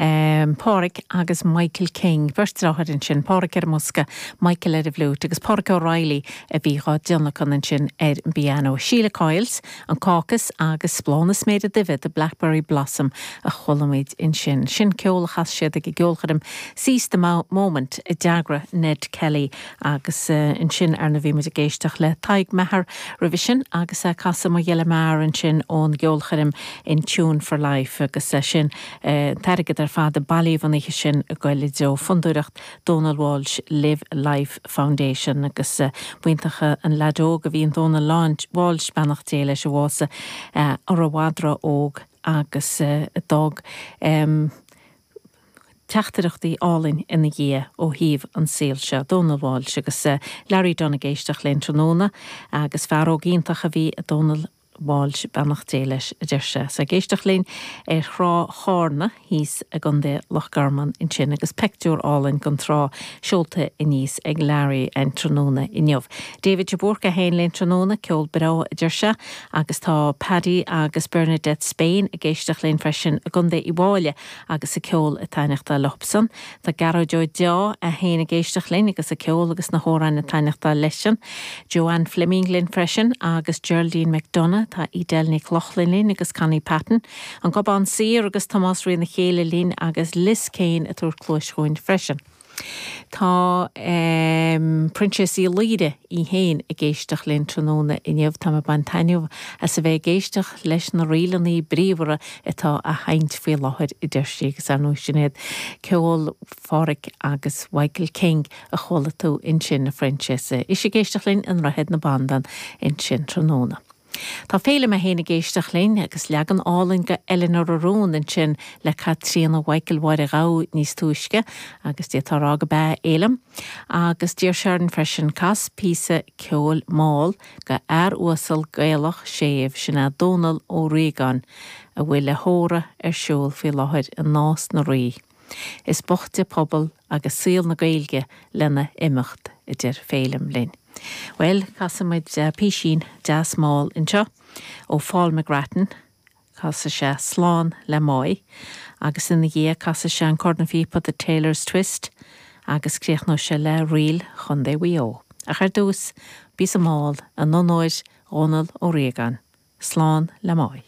Pádraic agus Michael King, beirt dreatháir ansin, Pádraic ar an mbosca, Michael ar an bhfliúit agus Pádraic O'Reilly a bhí dhá dtionlacan ansin ar an bpianó. Síle Coyle's, an Caucus agus Bláth na Sméire Duibhe, The Blackberry Blossom a chualaimid ansin. Sin ceol a chas siad ag an gceolchoirm Seize the Moment a d'eagraigh Ned Kelly agus ansin ar ndóigh bhí muid ag éisteacht le Tadhg Maher roimhe sin agus Cáit Majella Maher ansin ón gceolchoirm In Tune for Life agus sin an t-airgead ar fad a bailíodh an oíche sin ag dul i dtreo Fondúireacht Dónal Walsh Live Life Foundation agus b'iontach an leaid óg a bhí in Dónal Walsh, beannacht Dé leis a bhásaigh an-óg agus a d'fhág teachtaireachtaí álainn ina dhiaidh ó thaobh an saol seo. Dónal Walsh agus Larry Dunne ag éisteacht linn tráthnóna, agus fear óg iontach a bhí i Dónal Walsh, beannacht Dé leis, a deir sé, is ag éisteacht linn ar thrá Chárna thíos i gContae Loch Garman ansin agus peictiúr álainn gon trá seolta aníos ag Larry an tráthnóna inniu. David de Búrca é féin linn tráthnóna, ceol breá, a deir sé, agus tá Paddy agus Bernadette Spain ag éisteacht linn freisin i gContae Uíbh Fhailí agus an ceol ag taithneachtáil leobsan. Tá Gearóid Ó Deá, é féin ag éisteacht linn agus an ceol agus na hamhráin ag taithneachtáil leisean. Joanne Fleming linn freisin agus Geraldine McDonagh, tá Edel Nic Lochlainn linn agus Connie Patton, An Gobán Saor agus Tomás Rí na Céilithe linn agus Liz Kane ag tabhairt cluais dhúinn freisin. Tá Frances Uí Laoire í féin ag éisteacht linn tráthnóna inniu. Tá mé ag baint taitneamh as a bheith ag éisteacht leis na ríleanna bríomhara atá á seinnt faoi láthair a deir sí agus ar ndóigh sin é ceol Pháraic agus Mhichael King a chuala tú ansin, a Frances. Is ag éisteacht linn i nDroichead na Bandan ansin tráthnóna. Tá Féilim é féin ag éisteacht linn agus leagan álainn go Eleanóir a Rúin ansin le Caitríona Mhichael Mháire Ghabha níos túisce agus Dia dhá rá go beo a Fhéilim agus d'iarr sé orm freisin Cas píosa ceoil mall go fhear uasal Gaelach séimh sin é Dónal Ó Riagáin a bhfuil a thórramh ar siúl faoi láthair i Nás na Rí. Is boichte pobal agus saol na Gaeilge lena imeacht a deir Féilim linn. Bhuel, casfaidh muid písín deas mall anseo ó Paul McGrattan, casfaidh sé Slán le Máigh agus ina dhiaidh casfaidh sé an cornphíopa The Tailor's Twist agus críochnóidh sé le Ríl Chontae Mhaigh Eo. Ach ar dtús, píosa mall in onóir Dhónal Ó Riagáin. Slán le Máigh.